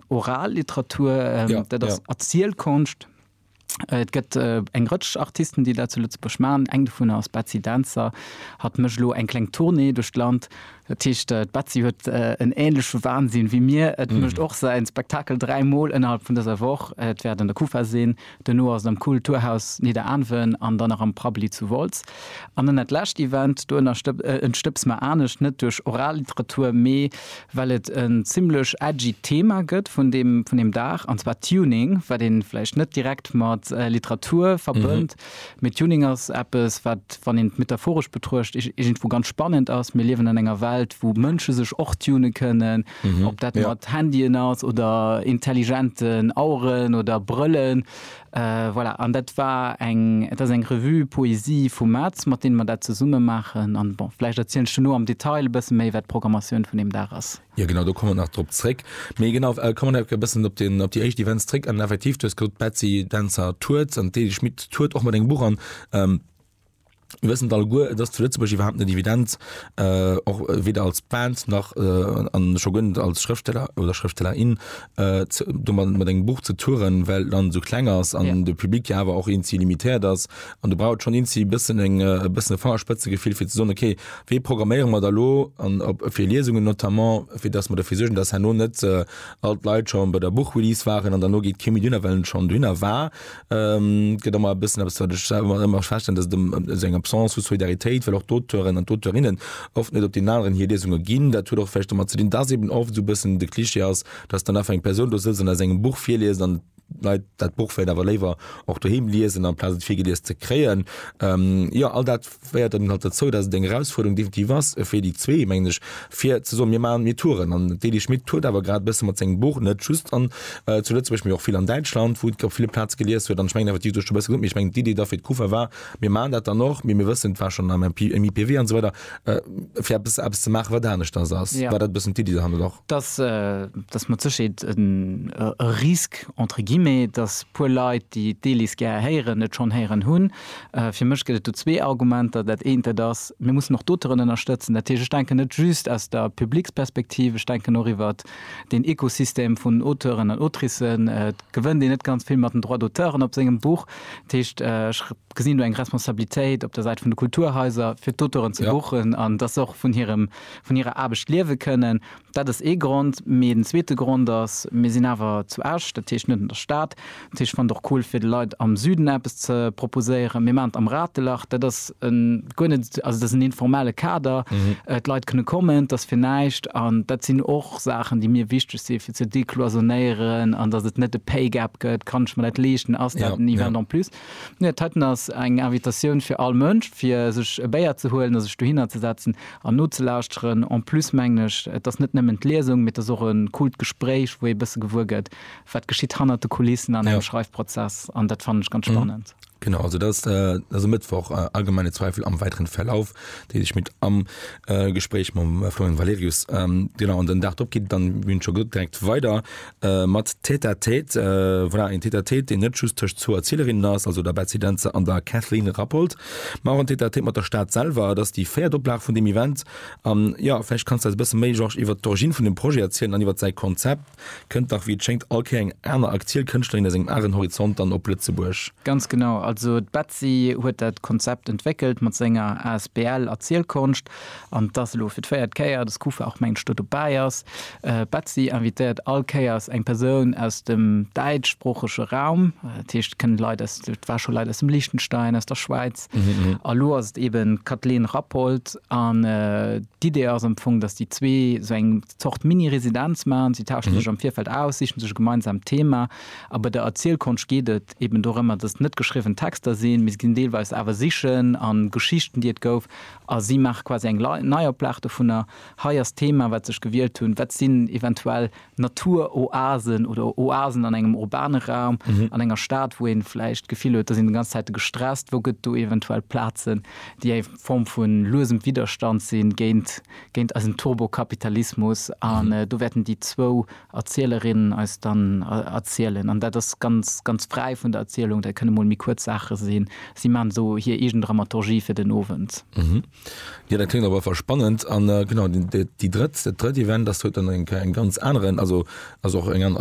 Oralliteratur, ähm, ja, dat ass ja. Erzielkonscht. Äh, et gëtt äh, eng Rëtsch Artisten, déi dat zu Lëtzebuerg machen. Eng vun ass Betsy Dancer, hat mech lo eng kleng Tournée duerch d'Land. Datcht äh, Betsy huet äh, en ähnleche Wahnsinn wie mir. Et mm. mecht och se en Spektakel dreimal innerhalb vun dëser Woch. Et werden der Kufa sinn. Duerno ass et am Kul-turhaus Nidderaanwen an dann nach am Prabbeli zu Wolz. An dann dat lescht Event, do ënnerstëpse mer anescht, net duerch Oralliteratur, mee well et en zimmlech edgy Thema gëtt vun deem Dag, an zwar Tuning, wat ee vläicht net direkt mat Literatur verbënnt, mee Tuning ass eppes, wat, wann een et metaphoresch betruecht, iergendwou ganz spannend ass. Mir liewen an enger Welt, wou Mënsche sech och tunen kënnen. Ob dat mat Handyen ass oder intelligenten Aueren oder Brëllen, voilà. An dat war eng, et ass eng Revue Poésie vum Maz, mat deene mer dat zesumme maachen. An bon, vläicht erzielen ech duerno am Detail e bësse méi, wat d'Programmatioun vun deem Dag ass. Jo, genau, do komme mer nach drop zréck. Mee genau, komme mer e bëssen op deen, op déi éischt Events zréck. An effektiv, du hues gesot, d'Betsy Dentzer tourt an d'Eli Schmit tourt och mat engem Buch an. Mir wëssen et alleguer, et ass zu Lëtzebuerg iwwerhaapt net evident, och weder als Band nach, a scho guer net als Schrëftsteller oder Schrëftstellerin, domat mat engem Buch ze touren, well d'Land esou kleng ass an de Public jo awer och eenzi limitéiert ass. An do brauch et schonn eenzi e bëssen eng, e bëssen e Fangerspëtzegefill, fir ze soen, ok, wéi programméiere mer da elo, an op fir Liesungen notamment, fir datt mer derfir suergen, datt herno net all d'Leit schonn bei der Buchrelease waren an dann elo geet kee méi dohinner, well en schonn dohinner war. gëtt ëmmer e bëssen eppes, wat ech selwer nach ëmmer feststellen, dass et ëm esou eng Absence vu Solidaritéit, well och d'Auteuren an d'Auteurinnen oft net op deenen aneren hir Liesunge ginn. Dat huet och vläicht domat ze dinn, dass eben oft esou e bëssen de Klischee ass, dass dann einfach eng Persoun do sëtzt an aus engem Buch virliest an d'Leit dat Buch vläicht awer léiwer och doheem liesen, amplaz et virgelies ze kréien. Jo, all dat. féiert dann halt derzou, dass et eng Erausfuerderung definitiv ass fir déi zwee, mengen ech, fir ze soen, mir maachen, mir touren. An d'Elie Schmit tourt awer grad e bësse mat sengem Buch, net just an, zu Lëtzebuerg, mee och vill an Däitschland, wou et op ville Plaze gelies huet. An ech mengen effektiv, du hues scho e bësse gesot, mee ech mengen, d'Idee da fir d'Kuvert war, mir maachen dat dann och, mee mir wëssen, et war schonn am MP, am IPW an esou weider, fir eppes, eppes ze maachen, wat aneschters ass. War dat e bëssen d'Iddi derhannert och? Et ass, et ass mat Sécherheet e Risque, entre guillemets, dass e puer Leit, déi d'Elis gär héieren, et schonn héieren hunn. Fir mech gëtt et do zwee Argumenter. Dat eent, dat ass, Mir mussen och d'Auteuren ënnerstëtzen. Dat heescht, ech denken net just aus der Publics-Perspektiv, ech denken och iwwer deen Ekosystem vun Auteuren an Autricen. Et gewënnt een net ganz vill mat den Droits d'auteuren op sengem Buch. Dat heescht, ech gesinn do eng Responsabilitéit op der Säit vun de Kulturhaiser, fir d'Auteuren ze buchen an dass se och vun hirer Aarbecht liewe kënnen. Dat ass ee Grond. Mee den zweete Grond ass, Mir sinn awer zu Esch, dat heescht net an der Stad. Dat heescht, fannt och cool fir de Leit am Süden eppes ze proposéieren. Mir maachen et am Ratelach. Dat ass guer net, also dat ass en informelle Kader. D'Leit kënne kommen, dat ass fir näischt. An dat sinn och Saachen, déi mir wichteg si fir ze decloisonnéieren. An datt et net e Pay Gap gëtt, Kann ech mer dat leeschten? Ass dat en Event en plus? Nee, d'Hëtten ass eng Invitatioun fir all Mënsch, fir sech e Béier ze huelen a sech dohinner ze setzen an nozelauschteren. En plus mengen ech, et ass net nëmmen d'Liesung, mee et ass och e coolt Gespréich, wou ee e bësse gewuer gëtt, wat geschitt hannert de Kulissen an engem Schreifprozess. An dat fannen ech ganz spannend. Genau, also dat ass e Mëttwoch. Allgemeine Zweifel am weiteren Verlauf deele ech mat am Gespréich mam Florian Valerius. Genau, an den Dag drop geet et dann, wéi schonn gesot, direkt weider Mat Tête à Tête, voilà, een Tête à Tête, deen net just tëscht zwou Erzielerinnen ass, also der Betsy Dentzer an der Kathleen Rappold, mä och en Tête à Tête mat der Stad selwer. Et ass déi véiert Oplag vun deem Event an, jo, vläicht kanns de eis e bësse méi, Georges, iwwert d'Origine vun deem Projet erzielen an iwwert säi Konzept. Kënnt dach, wéi et schéngt, all Kéier eng aner aktuell Kënschtlerin aus engem aneren Horizont dann op Lëtzebuerg. Ganz genau, also d'Betsy huet dat Konzept entwéckelt mat senger asbl Erzielkonscht An et ass elo fir d'véiert Kéier, dass d'Kufa och mengt sto dobäi ass. D'Betsy invitéiert all Kéiers eng Persoun aus dem däitschsproochege Raum. Dat heescht, et kënne Leit aus, et war scho Leit aus dem Liechtenstein, aus der Schwäiz. A lo ass et eben d'Kathleen Rappold. An d'Idee ass am Fong, dass déi zwee sou eng Zort Mini-Residenz maachen. Si tauschen sech am Virfeld aus, sichen sech e gemeinsamt Thema. A bei der Erzielkonscht geet et eben dorëmmer, dass et net geschriwwen Texter sinn, mee se ginn deelweis awer Sichen a Geschichten, déi et gouf, A si maache quasi eng Neioplag dovunner. Hei ass d'Thema, wat se sech gewielt hunn, Wat sinn eventuell Naturoasen oder Oasen an engem urbane Raum, an enger Stad, wou ee vläicht d'Gefill huet, da sinn déi ganz Zäite gestresst? Wou gëtt do eventuell Plazen, déi eng Form vu luesem Widderstand si géint eisen Turbokapitalismus? An do wäerten déi zwou Erzielerin eis dann erzielen. An dat ass ganz, ganz fräi vun der Erzielung, dat kënne mol méi kuerz Saache sinn. Si maachen esou hir eegen Dramaturgie fir den Owend. Jo, dat kléngt op alle Fall spannend. An genau, déi drëtt, dat drëtt Event ass huet dann eng ganz aneren, also ass och eng aner.